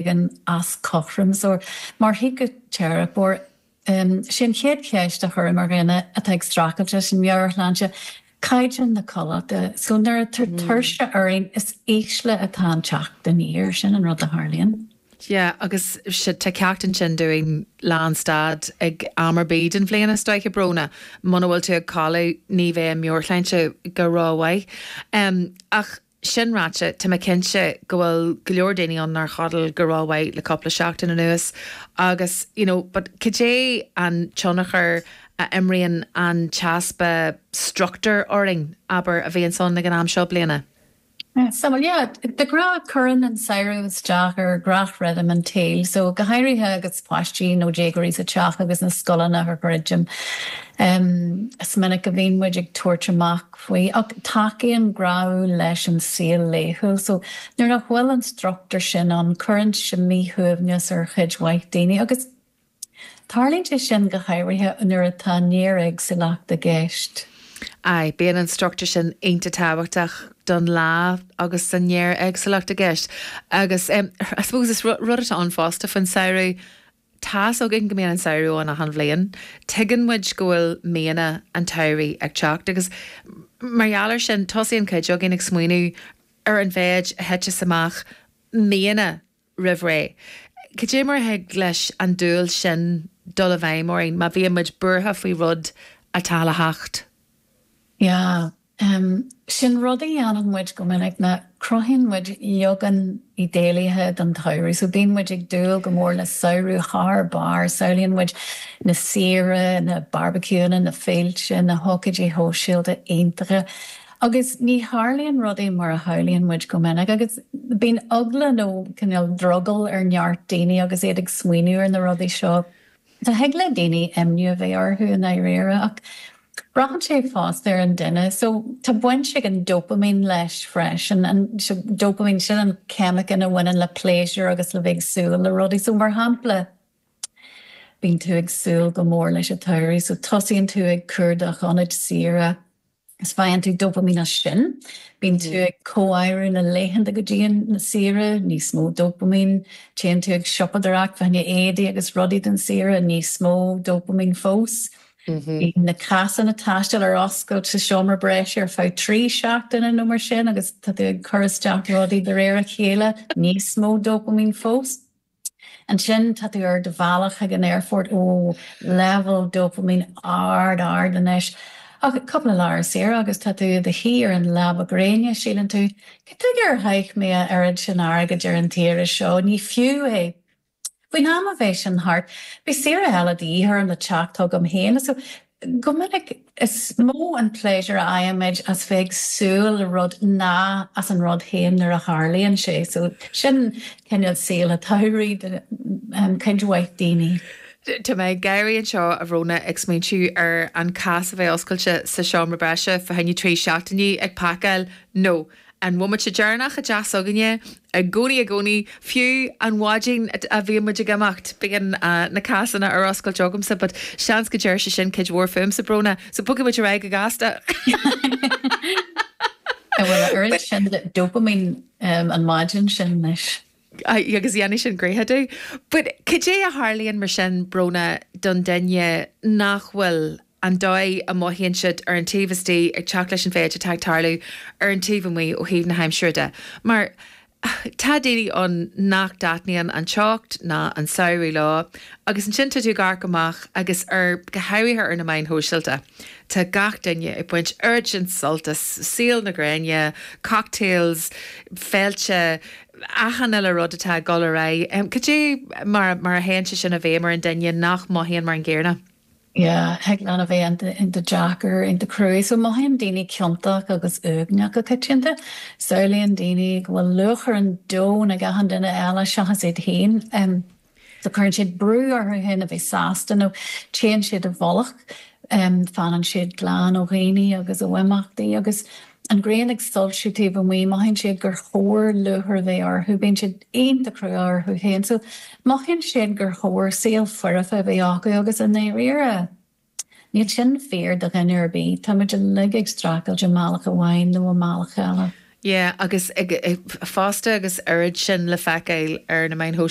bhíonn as cothrom is cóir. Mar shíciteiripeoir. sin an chéad cheist a chuirim ar dhaoine atá ag streachailt leis an meabhairshláinte, caighdeán na codlata. So nuair atá tuirse orainn is ísle atá an teacht aniar, sin an rud a tharlaíonn. Yeah, agus sea, tá ceacht ansin dúinn lánstad ag am ar bith den bhliain is dóiche, a Bhrónagh, muna bhfuil tú ag codladh ní bheidh an meabhairshláinte go ró-mhaith. Ach. Sin ráite, tá mé cinnte go bhfuil go leor daoine ann nár chodail go rómhaith le cúpla seachtain anuas agus, you know, but cad é an tionchar a imríonn an t-easpa struchtúir orainn, abair, a bhíonns ann ag an am seo bliana? Sea, bhuel, yeah, de ghnáth cuireann an samhradh isteach ar gach rithim an tsaoil, so go háirithe agus páistí nó déagóirí sa teach agus na scoileanna ar fad druidte. Is minic a bhíonn muid ag tabhairt amach faoi ach tacaíonn gnáthamh leis an saol laethúil so nuair nach bhfuil an struchtúr sin ann cuireann sé míshuaimhneas ar chuid mhaith daoine agus tarlaíonn sé sin go háirithe nuair atá néaréagsúlacht i gceist. Aye, bíonn an struchtúr sin iontach tábhachtach dár ndóigh agus an néaréagsúlacht i gceist agus em I suppose is rud atá ann fosta faoin samhradh Tá's againn go mbíonn an samhradh ann achan bhliain. Tuigeann muid go bhfuil míonna an tsamhraidh ag teacht agus mar gheall ar sin, tosaíonn cuid againn ag smaoineamh ar an mhéid a thiteas amach míonna roimh ré. Cad é mar a thig leis an dúil sin dul i bhfeidhm orainn má bhíonn muid buartha faoi rud atá le theacht? Sin rud a dhéanann muid go minic ná cruthaíonn muid leagan idéalaithe den tsamhradh. So bíonn muid ag dúil go mór le samhradh thar barr. Samhlaíonn muid na saoire, na barbaiciúanna, na féilte, na hócáidí sóisialta iontacha. Agus ní tharlaíonn rudaí mar a shamhlaíonn muid go minic. Agus bíonn eagla nó cineál drogall ar neart daoine agus iad ag smaoineamh ar na rudaí seo. So thig le daoine imní a bheith orthu i ndáiríre, ach braitheann sé fosta ar an duine. So, tá baint ag an dopaimín leis freisin, an, dopaimín, sin an ceimiceán a bhaineann le pléisiúr agus le bheith ag súil le rudaí. So, mar shampla, bíonn tú ag súil go mór leis an tsamhradh, so tosaíonn tú ag cuardach ionaid saoire, Is faigheann tú dopaimín as sin. Bíonn tú ag comháireamh na laethanta go dtí an saoire, níos mó dopaimín. Téann tú ag siopadóireacht, faigheann tú éadaí agus rudaí don saoire, níos mó dopaimín fós. Bíonn na cásanna taistil ar oscailt sa seomra breis ar feadh trí seachtaine nó mar sin agus tá tú ag cur isteach rudaí de réir a chéile, níos mó dopaimín fós. Ansin tá tú ar do bhealach chuig an aerfort, ó, leibhéal dopaimín ard, ard anois, ach cúpla lá ar saoire agus tá tú i do shuí ar an leaba gréine, síleann tú, cad chuige ar chaith mé a oiread sin airgid ar an tsaoire seo, ní fiú é. Faoin am a bheidh sin thart, beidh saoire eile de dhíth orm le teacht chugam féin. Go minic, is mó an pléisiúr a fhaighimid as bheith ag súil le rud ná as an rud féin nuair a tharlaíonn sé, so sin cineál saol an tsamhraidh do chuid mhaith daoine. Tá mé ag gáirí anseo, a Bhrónagh, ag smaointiú ar an cás a bheith oscailte sa seomra breise, fá choinne trí seachtainí ag pacáil, no. An bomaite deireanach i dteach s'againne, i gcónaí i gcónaí, fiú an mhaidin a bhíonn muid ag imeacht, beidh na cásanna ar oscailt agamsa but seans go ndeir sé sin cuid mhór fúmsa, Brónagh, so bogfaidh muid ar aghaidh go gasta. Bhuel, a oiread sin dopamine an mhaidin sin anois. Aye, agus dhéanfaidh sin gnoithe domh. But cad é a tharlaíonn mar sin, Brónagh, don duine nach bhfuil an dóigh a mothaíonn siad ar an taobh istigh ag teacht leis an mhéid atá ag tarlú ar an taobh amuigh ó thaobh na haimsire de? Mar tá daoine ann nach dtaitníonn an teocht ná an samhradh leo agus ansin tá tú ag amharc amach agus ar, go háirithe ar na meáin shóisialta, tá gach duine ag baint oiread sin sult as saol na gréine, cocktails, féilte, achan uile rud atá ag dul ar aghaidh. Cad é mar a théann sé sin i bhfeidhm ar an duine nach mothaíonn mar an gcéarna? Yeah, thig leis a bheith iontach deacair, iontach cruaidh. So mothaíonn daoine ciontach agus uaigneach go coitianta. Samhlaíonn daoine go bhfuil lúcháir an domhain ar achan duine eile seachas iad féin. So cuireann siad brú orthu fhéin a bheith sásta nó téann siad i bhfolach, fanann siad glan ó dhaoine agus ó imeachtaí. Agus an ghrian ag soilsiú taobh amuigh mothaíonn siad gur chóir lúcháir a bheith orthu, bíonn siad iontach crua orthu fhéin. So mothaíonn siad gur chóir saol foirfe a bheith acu agus i ndáiríre níl sin fíor do dhuine ar bith, táimid uilig ag streachailt i mbealach amháin nó i mbealach eile. Yeah agus ag, fosta agus oiread sin le feiceáil ar na meáin shóisialta.